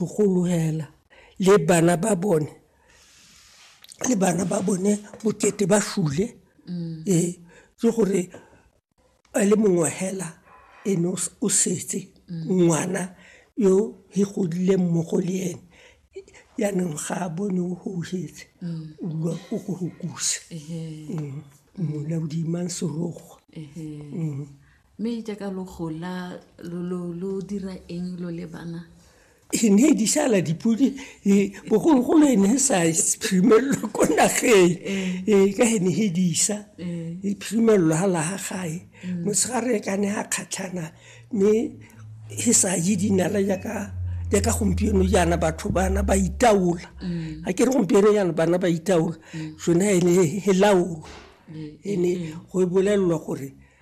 Bogologela le bana ba bone le bana ba bone bokete ba shule ee ke gore a le mongwe hela ene o setse ngwana yo he godile mmogo le ene yanong ga a bone o houhetse o bua o go go kusa mmolao dimang serogo. Mme jaaka lo gola lo dira eng lo le bana? E ne di sala dipodi e, bogologolo e ne e sa phimelelo ko nageng e ka e ne e disa e phimelelo ga laga gae mm. motshegare ka ne a kgatlhana mme e sa je dinala jaaka jaaka gompieno jaana batho bana ba itaola mm. a ke re gompieno jaana bana ba itaola mm. sone e ne e laolo e ne go e bolelelwa gore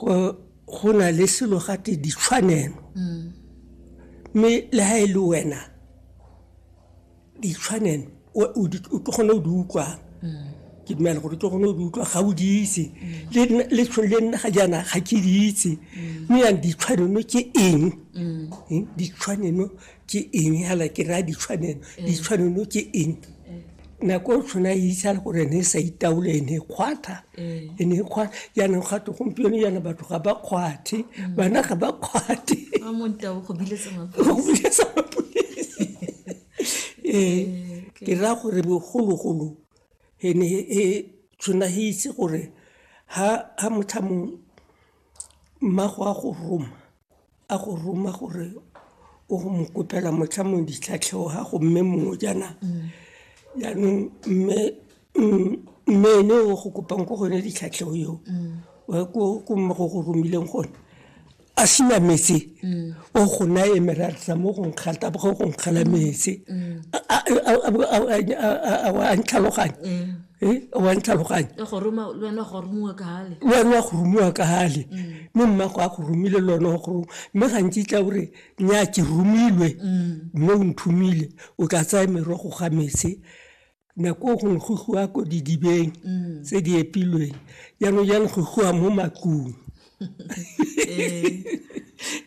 go na le selo gate ditshwanelo mm. mme le ga e le wena ditshwanelo o tlo kgone o di utlwang mm. ke dumela gore tlo gone o di utlwa ga o di itse mm. le tshone le nna ga jaana ga ke di itse mme yang ditshwanelo ke eng ditshwanelo ke eng hala ke raya ditshwanelo eh. ditshwanelo ke eng eh. nako o tshwana e itsa le gore ne e sa itaole e ne e kgwatha eh. e ne e kgwatha jaanong gato gompieno jaana batho ga ba kgwathe mm. bana ga ba kgwathe go biletsa mapodisi ee ke raya gore bogologolo e ne e tshwana e itse gore ha motho a mongwe mmago a go roma a go roma gore o go mo kopela motlha mo ditlhatlhego ga go mme mongwe jaana jaanong mme mme ene o go kopang ko gone ditlhatlhego eo ko mme go go romileng gone a sina metse o go naye merarisa mo go nkgata bo go nkgala metse a ntlhaloganye e wa ntlhaloganye e gore ma le wena go rumiwa ka hale le wena go rumiwa ka hale mm. mme mma go a go rumile le wena go ruma mme gantsi tla gore nya ke rumilwe mm. mme o nthumile o tla tsaya merogo ga metse nako gongwe go goa ko didibeng mm. tse di epilweng jaanong jalo go goa mo matlong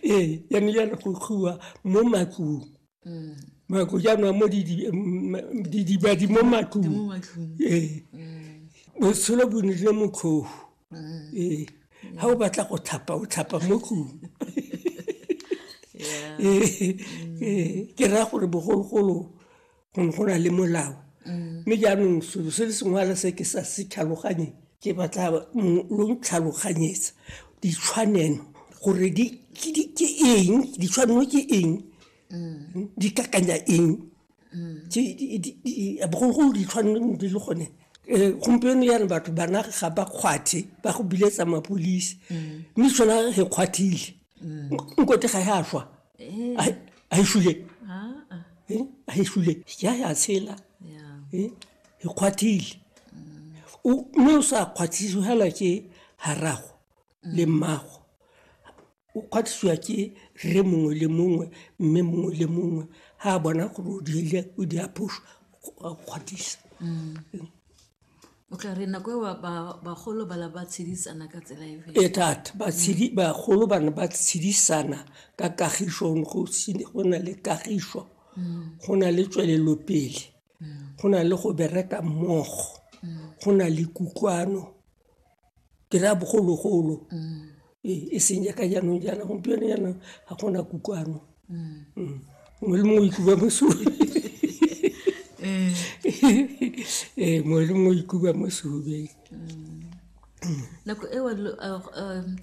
ee jaanong jalo go goa mo matlong Mm. mako jaanong mo didibadi mo matlong ee botshelo bo nile motlhofu ee ga o batla go thapa o thapa mo tlong ee ke raya gore bogologolo go ne go na le molao mme jaanong selo se le sengwala se ke sa se tlhaloganyeng ke batla lo ntlhaloganyetsa ditshwanelo gore di ke eng ditshwanelo ke eng mm. di kakanya eng mm. bogologolo ditshwanelo di le gone um gompieno yana batho bana ga ba kgwathe ba go biletsa mapolisi mm. mme sona re kgwathile nkote ga ya swa Eh. a e- a e shule Ah, ah. Eh, a e shule ya ya tshela Yeah. Eh, e kgwathile O- mme o sa kgwathisiwe fela ke harago le mmago o kgwathisiwa ke rre mongwe le mongwe mme mongwe le mongwe ga a bona gore o dirile o di aphoso a kgwathisa o tla re nako eo bagolo ba ba tshedisana ka tsela e e thata batshedi bagolo ba ne ba tshedisana ka kagiso go na le kagiso go na le tswelelopele go na le go bereka mmogo go na le kutlwano ke raya bogologolo ee e seng jaaka jaanong jaana gompieno jaana ga gona kukwano mongwe le mongwe ikuba mosodi ee mongwe le mongwe ikuba mosodi nako eo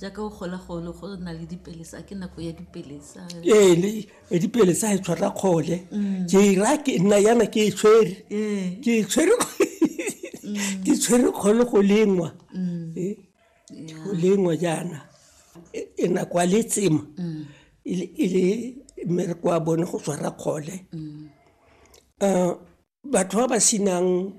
jaaka o gola golo go na le dipelesa ke nako ya dipelesa ee pedi pele sa e tshwara kgole mm. ke e ra ke nna yana ke e tshwere mm. ke e tshwere mm. ke tshwere kgole go lengwa eh, go lengwa jaana e, e na kwa letsema e le e mmereko wa bone go tshwara kgole um batho ba ba senang